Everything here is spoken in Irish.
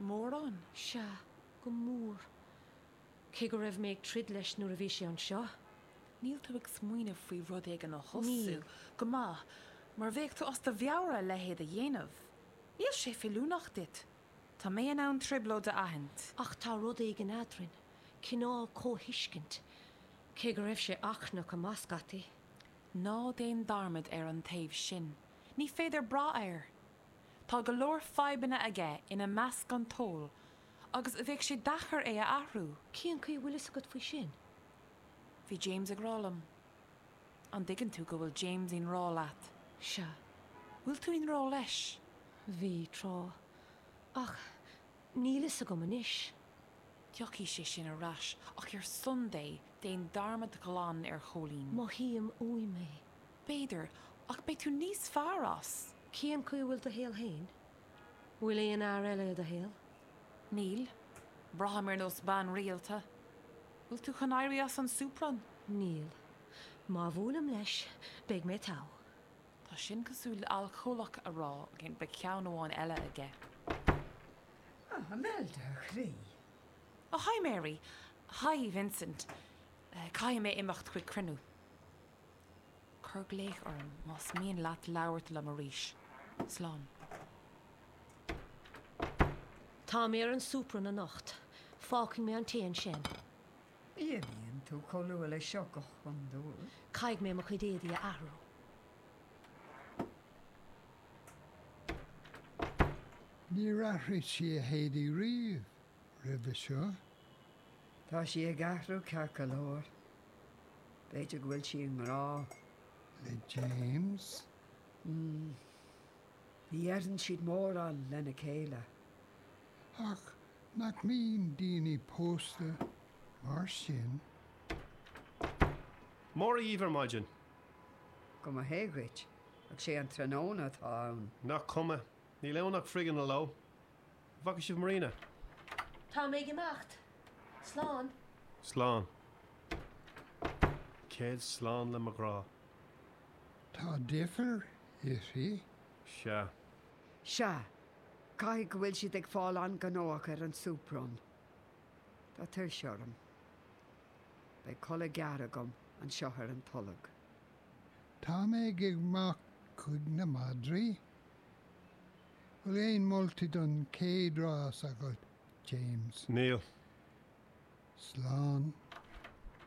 Mórán, sea, go mór. Cé go raibh mé ag troid leis nuair a bhí sé anseo. Níl tú ag smaoineamh faoi rud éigin a thosú? Níl. Go maith, mar bheadh tú as do mheabhair a leithéid a dhéanamh. Níl sé feiliúnach duit. Tá mé in ann trioblóid a aithint. Ach tá rud éigin eadrainn, cineál comhthuiscint, cé go raibh sé achrannach go maith scaití. Ná déan dearmad ar an taobh sin. Ní féidir brath air. Tá go leor fadhbanna aige, ina measc an t-ól, agus bheadh sé deacair é a athrú. Cén chaoi a bhfuil fhios agat faoi sin? Bhí James ag rá liom. An dtuigeann tú go bhfuil James i ngrá leat? Sea. Bhfuil tú i ngrá leis? Bhí, tráth. Ach níl fhios agam anois. Tiocfaidh sé sin ar ais, ach ar son Dé, déan dearmad glan ar Chóilín. Mothaím uaim é. B'fhéidir, ach beidh tú níos fearr as. Cén chaoi a bhfuil do shaol féin? Bhfuil aon fhear eile i do shaol? Níl. Braithim ar nós bean rialta. Bhfuil tú chun éirí as an soup run? Níl. Má bhuailim leis, beidh mé togha. Tá sin cosúil le alcólach ag rá, beidh ceann amháin eile agam. Ah, Imelda, a chroí. Oh, hi Mary. Hi, Vincent. Caithfidh mé imeacht chuig cruinniú. Cuir glaoch orm más mian leat labhairt liom arís. Slán. Tá mé ar an soup run anocht. Fágfaidh mé an tae ansin. Ní bhíonn tú chomh luath leis seo go hiondúil. Caithfidh mé mo chuid éadaí a athrú. Níor athraigh sí a héadaí riamh roimhe seo. Tá sí ag athrú ceart go leor. B'fhéidir go bhfuil sí i ngrá le James. Mmm. Ní fheileann siad mórán lena chéile. Ach nach mbíonn daoine pósta mar sin? Mora dhíbh ar maidin. Go mba hé dhuit, ach sé an tráthnóna atá ann. Nach cuma. Níl ann ach frog ina leo. bhfaca sibh Marina? Tá mé ag imeacht. Slán. Slán. Céad slán le mo ghrá. Tá deifir uirthi. Sea. Sea. Caithfidh go bhfuil siad ag fáil an-ghnóthach ar an soup run. Tá tuirse orm. Beidh codladh gearr agam anseo ar an tolg. Tá mé ag imeacht chuig na madraí. Bhfuil aon moltaí don chéad rás agat, James? Níl. Slán.